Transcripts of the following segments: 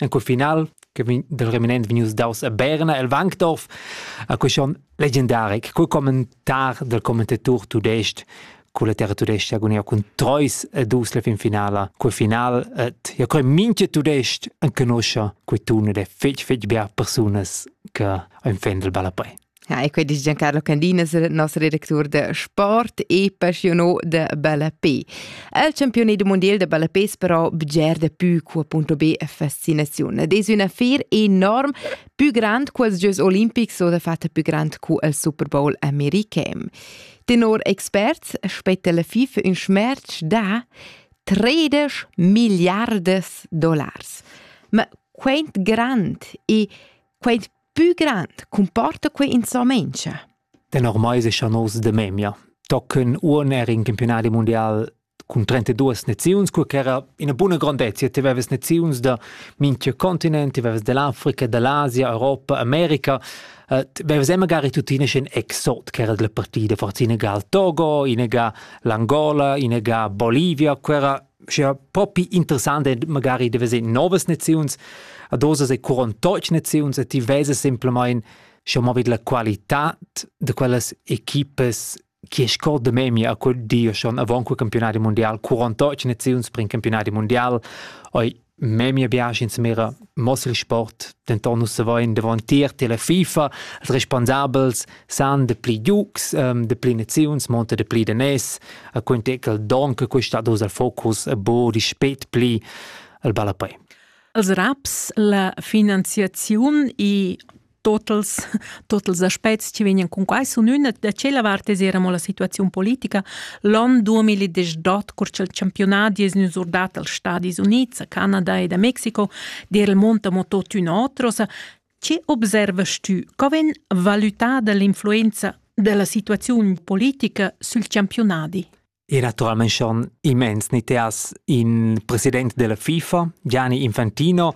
En quel final che vegn dal reminent vegnius daus a Berna el Wankdorf a quei schon legendaric cul commentar del commentator tudest culla terra tudesca agonia cun Treus e dus la fin finala quel final et ja coi minche tudest en conoscia quei tun ed è fetg fetg bia persunas che ein fendel balla pei Ja, e quei dice Giancarlo Candina, nostro direttore de sport e passiono de Ballapé. El campione du mondial de Ballapé però bger de più cu appunto be fascinazione. Des una affaire enorme, più grande que els Jeux Olimpics o de fatta più grande cu el Super Bowl american. Tenor experts spetta la FIFA un schmerz da 13 miliardes dollars. Ma quant grand e quant pü grand comporta quei insomma inscha? Tenor mai se schon os de memia. Tocken un er in campionati mondial cun 32 naziuns, quei era ina buna grandezia. Ti veves naziuns da minchia continent, ti veves dell'Africa, dell'Asia, Europa, America. Uh, ti veves e magari tuttina schon exot che era della partita, forza inega al Togo, inega l'Angola, inega Bolivia, quei era scha propi interessant è magari di vedere novas naziuns ad osas e curontoc naziuns e ti vesa semplamain scha ma vid la qualità de quellas equipes chi scorda memia a quel dio schon avant quel campionati mondial 48 naziuns per in campionati mondial oi memia biasch insumera mossa il sport denton nus savein davon tier tela FIFA als responsabels san de pli giugs um, de pli naziuns monta de pli de nes a quintecal don che questa dos al focus a bo di spet pli al ballapei als raps la finanziaziun e totals totals aspects che vegnan cun quai sun üna da tschella vart es eir amo la situaziun politica. L'on 2018, cur cha'l championat es gnü surdat als Stadis Units, a Canada ed a Mexico, d'eir il mond amo tuottüna otros. Che observast tü? Co vegn valutada l'influenza della situaziun politica sül championadi? E naturalmein schon immens ni te has in president della FIFA, Gianni Infantino,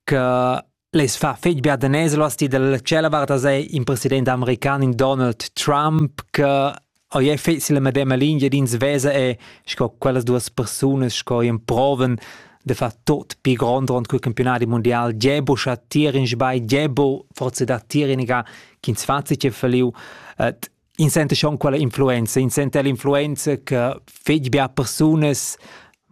che les fa fetg bia da neslas ti dalla cella varta sei in president american in Donald Trump che oi è fetz la medema linea d'ins vesa e sco quellas duas persunas sco in proven de fa tot pi grond rond cul campionati mondial Gebo scha tir in sbai Gebo forse da tir in ga ch'ins fazi che feliu In senta schon quella influenza, in senta l'influenza che fetg bia persunas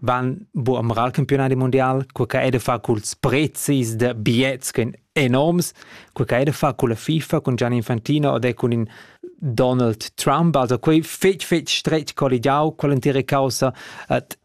van bu am ral campionadi mundial, quei che ei da far culs prezis da biets che ein enorms, quei che ei da far culla FIFA cun Gianni Infantino ed è cun in Donald Trump, also quei fetg fetg stretg colligiau quell'entira caussa, et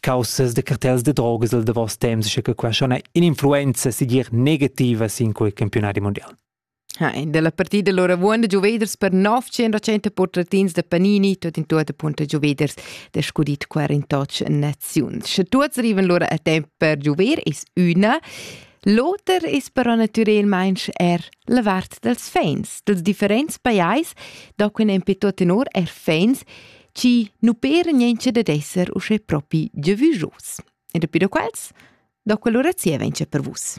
caussas de cartels de drogas del davos temps, sche che qua schon un'influenza sigir negativa sin quei campionati mondial. Ha, in della partita allora buon de Juveders per 900 portratins de Panini, tot in tutte punto Juveders de scudit 48 nazions. Sche tuts arriven allora a temp per Juver is una, L'oter is però naturalmente er la vart dels fans, dels differents pajais, da quin en tot tenor er fans chi nu pera niencha dad esser uschè propi giavüschos. E dapi da quels, da quell'ura zieva incha per vus.